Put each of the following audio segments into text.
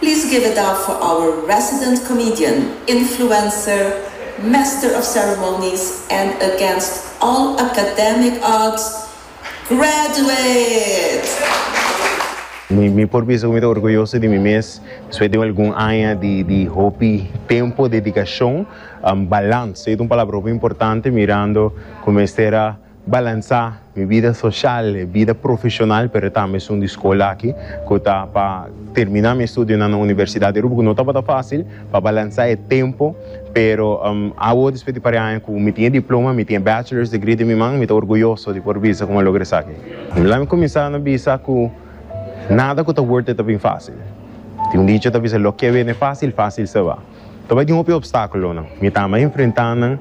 Please give it up for our resident comedian, influencer, master of ceremonies and against all academic odds, Graduate! Mi por bisa ku mi ta orguyoso di mi mes despues di un algun aña di hopi tempu, dedikacion, balans. E ta un palabra hopi importante mirando ku mester a balansá mi bida soshal i bida profeshonal, pero e tambe es un di skol aki ku ta pa terminá mi estudionan na universidat di Aruba, ku no tabata fásil pa balansá e tempu, pero awo despues di paria aña ku mi tin e diploma, mi tin e bachelor's degree den mi man, mi ta orguyoso di por bisa ku mi a logra esaki. Laimi kuminsá no bisa ku nada ku ta worth it ta bin fásil. Tin un dicho ta bisa, Lo ke bene fásil, fásil se ba. Ta bai tin hopi opstakulonan mi ta ama enfrentá nan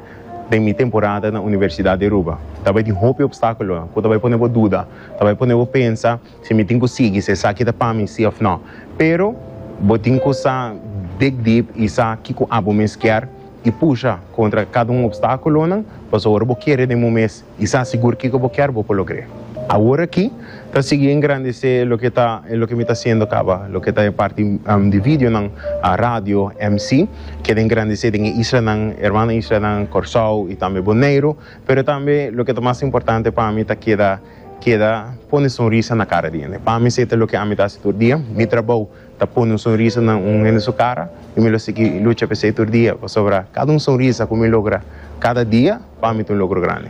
den mi temporada na Universidat di Aruba. Ta bai tin hopi opstakulonan ku ta bai pone bo duda, ta bai pone bo pensa si mi tin ku sigui, si esaki ta pa mi si òf nò. Pero bo tin ku sa big deep i sa kiko abo mes kier i pusha kontra kada un opstakulonan pasobra bo kere den bo mes I sa sigur kiko bo kier bo por logr'é. Awor aki ta sigui engrandecé loke ta e loke mi ta hasiendo caba, loke ta e parti di videonan, radio, mc. Keda engrandecé den e islanan, hermano islanan, Corsou i tambe Boneiro. Pero tambe loke ta mas importante pa mi ta keda keda pone sonrisa na cara di hende. Pa mi se ta loke ami ta hasi tur dia. Mi trabou Ta pone un sonrisa na un hende su cara y mi lo sigui lucha pa esey tur dia pasobra cada un sonrisa cu mi logra cada dia pa mi ta un logro grandi.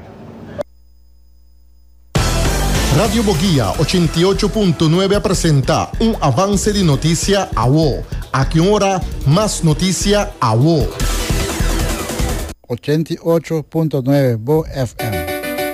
Radio Boguia ochenta i ocho punto nuebe a presenta un avance di noticia awo. Aki un ora mas noticia awo. Ochenta i ocho punto nuebe Bo FM.